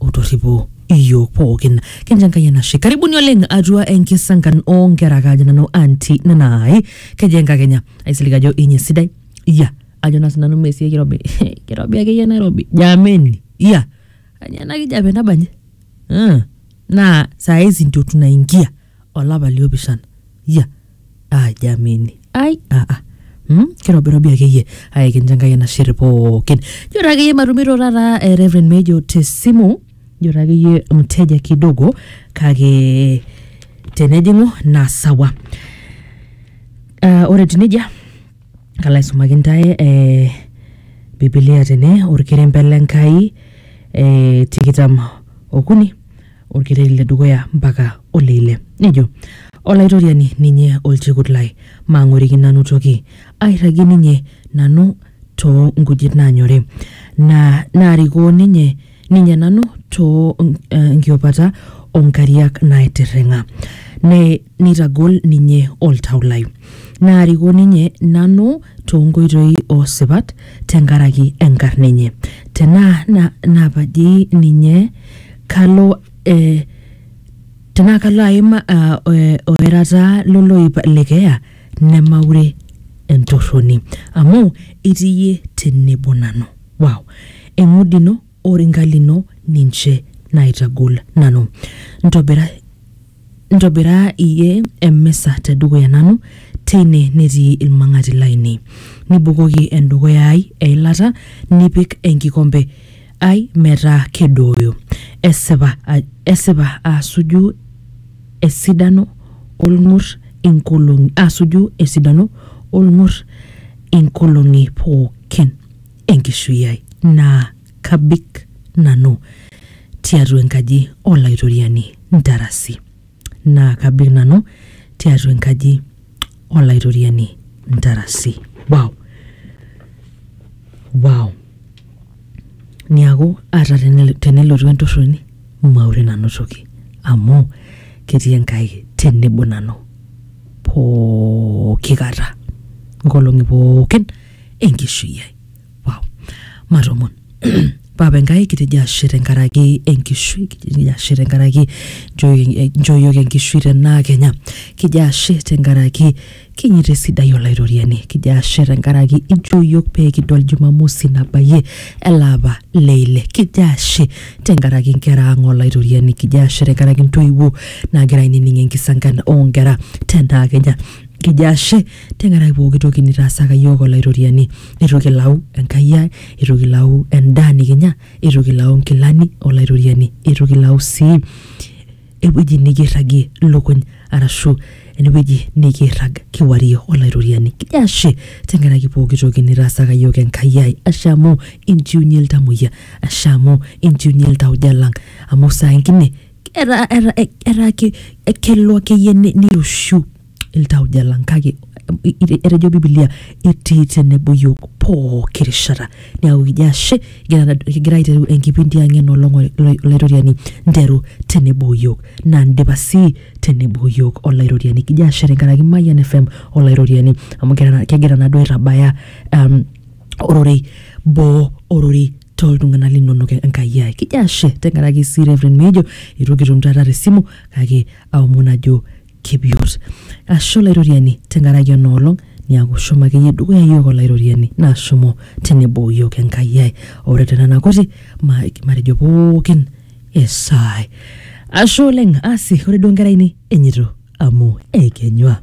otorripo iyiook pookin kincho enkai enashe karibuni oleng atua enkisankan oonkera kaajo nanu anti nanai keji enkakenya aisilig ajo inyi sidai iya ajo naa sinanu mesie kirobi kirobi akeyie nairobi jameni iya anya ena kijape nabanji Ah, naa saa hizi ndio tunaingia olapa liopishana ya aajamini ai aa Mm, kirobirobi akeyie ai kincho enkai enashe pookin jito akeyie matumito taata eh, Reverend Mejo tesimu jito akeyie mteja kidogo kake tenejing'u naa sawa uh, ore etiu nejia kalo aisumaki ntae eh, bibilia tene orkerembe lenkai eh, tikitam okuni olkereri le dukuya mpaka ole ile. Nejo Olaitoriani ninye olchekut lai, maang'oriki nanu toki, airragie ninye nanu too nkujit naanyori, naa naarikoo ninye ninye nanu too nkiopata oo nkariak naatirring'a, ne neitagol ninye oltau lai. Naarikoo ninye nanu too nkoitoi oo sipat te nkaraki enkarna enye, te naa naapajie ninye kalo eh, tenaa kalo aim ah, eh, oerataa loloip le keeya nemaure entorroni amu itii iyie tenebo nanu wow eng'udi ino oringa lino ninche naitagol nanu ntobira Ntobiraa iyie emisa te dukuya nanu, teine netii ilmang'ati laainei. Nibukoki endukuya ai eilata, nipik enkikompe ai metaa kedooyo. Esipa, esipa asuju esidano o lng'ur inkolong'i, asuju esidano o lng'ur inkolong'i pooki e nkishui ai. Naa kabik nanu tiatua enkaji Olaitoriani ntarasi, naa kabik nanu tiatua enkaji Olaitoriani ntarasi. Wow! Wow! Niaku ata tenel- tenelotu entorroni maure nanu toki amu ketii Enkai tenebo nanu pooki kata nkolong'i pookin enkishui ai. wow. matomon papa enkai kitejo ashe tenkaraki enkishui kitejo ashe tenkaraki nchooyioki enkishui tenaa kenya kijo ashe tenkaraki kinyita esidai olaitoriani kijo ashe tenkaraki inchooyioki pee kidol jumamosi nabayie elaapa leile kijo ashe tenkaraki nkera ang olaitoriani kijo ashe tenkaraki ntoiwuo naagira ainining enkisankan oonkera tenaa kenya kijo ashe Tenkaraki pooki toki nitaasaka iyiook Olaitoriani, eitu kilau Enkai ai, eitu kilau endaa nikinya, eitu kilau nkilani o Laitoriani, eitu kilau sii ewueji nikirragie ilukuny arashu enewueji nikirrag kiwarie Olaitoriani. Kijo ashe tenkaraki pooki toki nitaasaka iyiook Enkai ai. Ashe amu inchiunyie iltamuoyia, ashe amu inchiunyie iltauja lang amu saa ingine etaa, etaa, etaa kelo akeyie niroshiu iltauja lang kake etejo bibilia etii tenebo yiok pooki rishata neaku kijo ashe kigira kigira aiteru enkipindi ang enolong olaitoriani nteru tenebo yiok naa ndipa sii tenebo yiok olaitoriani kijo ashe tenkaraki mayian fm olaitoriani amu kegira kegira naduo aitabaya um, ororei boo ororei toltung'anak linonok enkai ai kijo ashe tenkaraki sii reverend mejo itu kitum taata tesimu kake aomon ajo kepiot. Ashe Olaitoriani tenkaraki ena olong niaku shomo akeyie dukuya iyiook Olaitoriani naa shomo tenebo iyiook Enkai ai. Ore te nena kuti ma- matejo pookin esaai. Ashe oleng, asi ore duo nkera ainei enyeito amu eikenyua.